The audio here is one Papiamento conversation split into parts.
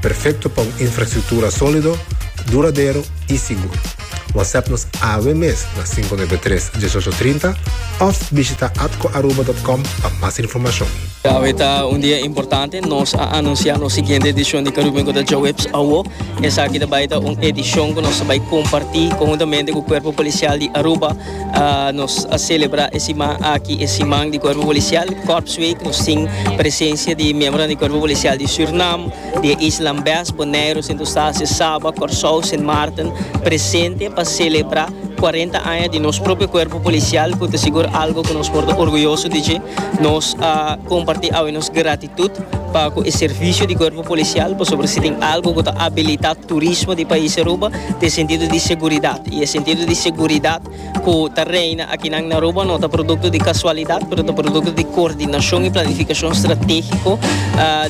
Perfecto pa un infrastructura solido, duradero y sigur. Whatsapp nos awe mes na cinco nuebe tres, diesocho trinta of bishita atcoaruba.com pa mas informacion. Awe ta un dia importante, nos a anuncia nos siguiente edicion di Caribe cu ta Djaweps Awo. Esaki ta bay ta un edicion cu nos ta bay comparti conjuntamente cu Cuerpo Policial di Aruba. Nos a selebrá e siman aki e Siman di Kuerpo Polisial, Korpsweek. Nos tin presensia di miembronan di Kuerpo Polisial di Surinam, di e islan bes, Boneiru, Sint Eustatius, Saba, Kòrsou, Sint Maarten, presente pa selebrá kuarenta aña di nos propio Kuerpo Polisial ku ta sigur algu ku nos por ta orguyoso di dje. Nos a kompartí awe nos gratitud. Tut pa cu e servicio di cuerpo policial pasobra si tin algo cu ta abilita turismo di pais Aruba ta e sentido di seguridad y e sentido di seguridad cu ta reina akinan na Aruba no ta producto di casualidad pero ta producto di coordinacion y planificacion strategico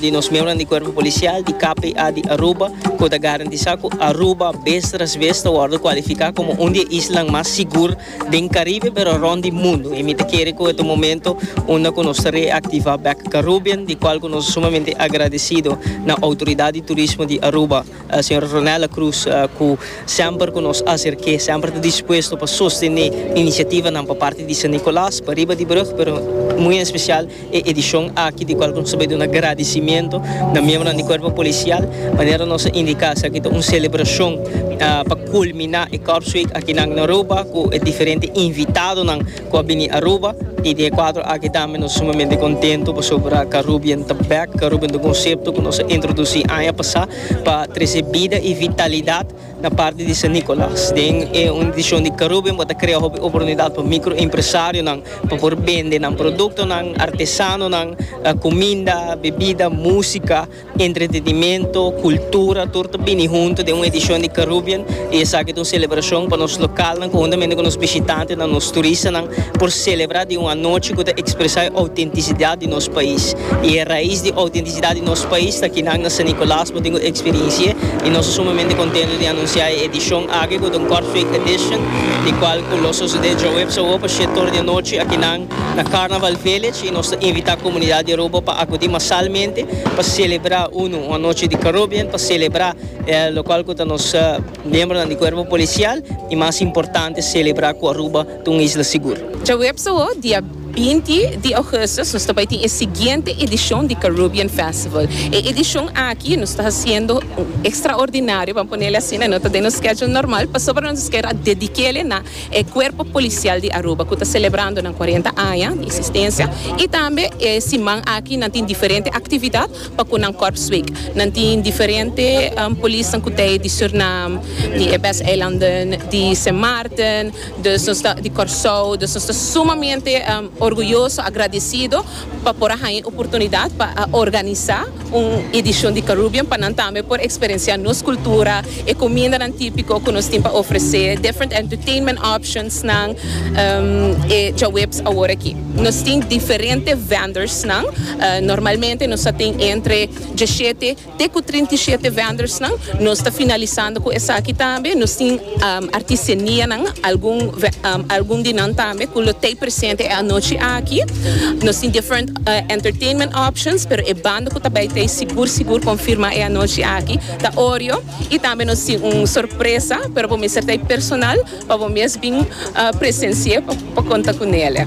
di nos miembronan di cuerpo policial di KPA di Aruba cu ta garantisa cu Aruba bes tras bes ta wordo cualifica como un di e islanan mas sigur Den Caribe pero rond di mundo y mi ta kere cu e ta un momento unda cu nos ta reactiva bek Carubbean di cual cu nos ta sumamente agradecido na Autoridad di Turismo di Aruba señora Ronella Cruz cu semper cu nos acerke, semper ta dispuesto pa sostene iniciativanan pa parti di San Nicolas, pa riba di brug pero muy en especial. E edishon aki di kual nos ta bai duna gradisimentu na miembronan di kuerpo polisial, manera nos a indiká esaki ta un selebrashon pa kulminá e Corps Week akinan na Aruba ku e diferente invitadonan ku a bini Aruba i den e kuadro aki tambe nos sumamente kontentu pasobra Carubien ta bèk. Carubien ta un konsepto ku nos a introdusí aña pasá pa trese bida i vitalidat. Na parti di San Nicolas den e un edishon di Carubem bo ta krea hopi oportunidat pa mikro empresarionan pa por bende nan produktonan, artesanonan, kuminda, bebida, músika, entretenimentu, kultura, tur ta bini huntu den un edishon di Carubem i esaki ta un selebrashon pa nos lokalnan konhuntamente ku nos bishitantenan, nos turistanan por selebrá di un anochi ku ta ekspresá e outentisidat di nos pais i e rais di outentisidat. Siudad di nos pais ta kinan na San Nicolas bo tin un experiencia y nos ta sumamente contento di anuncia e edicion aki cu ta un Kortrijk edition di cual cu lo sucede Djowibs Aruba siete ora di anochi akinan na Carnaval Village y nos ta invita comunidad di Aruba pa acudi masalmente pa celebra uno un anochi di Carrubian pa celebra lo cual cu ta nos miembronan di cuerpo policial y mas importante celebra cu Aruba ta un isla sigur. Djaweps awo, dia binti di ougustus, nos ta bai tin e siguiente edishon di Carubbean Festival. E edishon aki nos ta hasiendo ekstraordinario, ban ponele asina, no ta den nos schedule normal, pasobra nos sker a dedik'e na e Cuerpo Policial di Aruba ku ta selebrando nan kuarenta aña di eksistensia i tambe e siman aki nan tin diferente aktividat pa ku nan Korpsweek. Nan tin diferente polisnan ku ta e di Surinam, di e Best Eilanden, di Sint Maarten. Dus nos ta di Kòrsou, dus nos ta sumamente orguyoso, agradisido pa por a haña e oportunidat pa a organisá un edishon di Carubbean pa nan tambe por eksperensiá nos kultura, e kumindanan típiko ku nos tin pa ofresé, different entertainment optionsnan. E djaweps awor aki nos tin diferente vendors nan, normalmente nos a tin entre djeshete Te ku trinta i shete vendersnan nos ta finalisando ku esaki tambe. Nos tin artisenianan, algun algun di nan tambe ku lo ta ei presente e anochi aki. Nos tin different entertainment options, pero e banda ku ta bai ta ei sigur sigur konfirmá e anochi aki ta Oreo. I tambe nos tin un sorpresa, pero bo mester ta ei personal pa bo mes bin presensi'é pa konta ku nele.